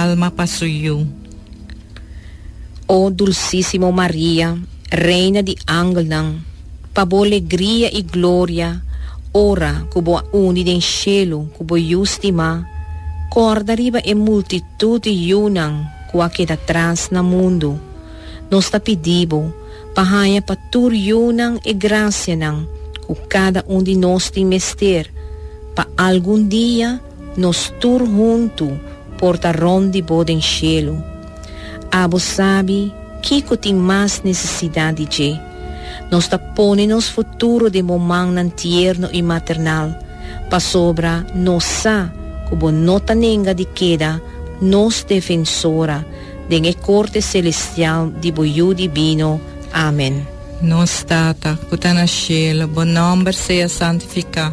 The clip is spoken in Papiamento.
alma pa su yu. O dulsísimo Maria, Reina di angelnan, pa bo legria i gloria ora ku bo a uni den shelu ku bo Yu stimá, kòrda riba e multitut di yunan ku a keda tras na mundu. Nos ta pidi bo pa haña pa tur yunan e grasianan ku kada un di nos tin mester pa algun dia Nos tur huntu por ta rond di Bo den shelu. Abo sabi kico tin mas necesidad di dje. Nos ta pone nos futuro den Bo mannan tierno y maternal, pasobra nos sa cu Bo no ta nenga di keda nos Defensora den e corte celestial di Bo Yu Divino. Amen. Nos Tata, cu ta na shelu, Bo nomber sea santifica.